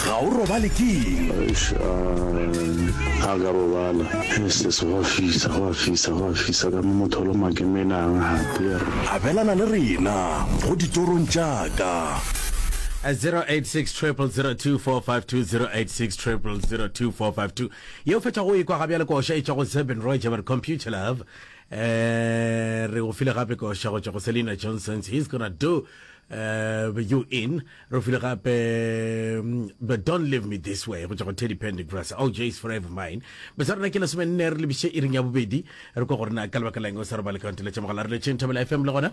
ga o robale ke a ka robala sese go a fisa go a fisa go a fisa ka motholo makemenang gape abelana le rena go ditorong jaaka 0860002452 yeo fethago e kwa ga bjale koša e tšwa go zebin roger computer love Eh, re go file gape koša go tšwa go selina johnsons he's gonna do uh, you in re go file gape mm, but don't leave me this way go tšwa go teddy pendy grass oh jays forever mine besa rena ke lesome nne re lebiše iring ya bobedi re kwa gore na ka lebaka leng o sa re ba le kaonteletša mogala re letšeng thabela fm le gona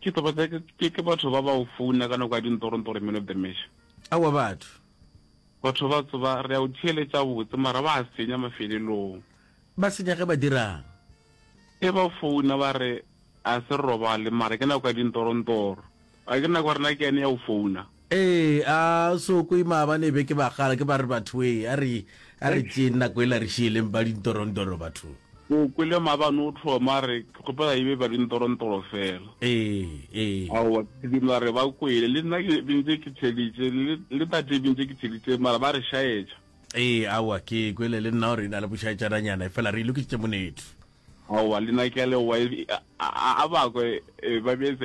Ke taba tsa ke ke ke batho ba ba o founa ka nako ya dintoronto re meno the mesh. Awa batho. Batho ba tsoba re a o theeletša botse mara ba a senya mafelelong. Ba senya ge ba dirang? Ge ba founa ba re a se robale mara ke nako ya dintorontoro. A ke nako ya rena ke yane ya o founa. Ee, a so kwe maabane e be ke bagala ke ba re bathwee, a re a re tšeeng nako ela re šieleng ba dintorontoro batho. O kwele maabane o tlhoma a re, Ke kgopela e be ba dintorontoro fela. Ee, ee. Aowa, ke sedimo a re ba kwele, le nna ke bentše ke theeditše, le le tate e bentše ke theeditše, mara ba re šaetša. Ee, aowa, ke kwele le nna gore e na le bošaetšananyana, efela re e lokišitše monetho. Aowa, le nna ke a leboga, e a a bakwa e ba beetse.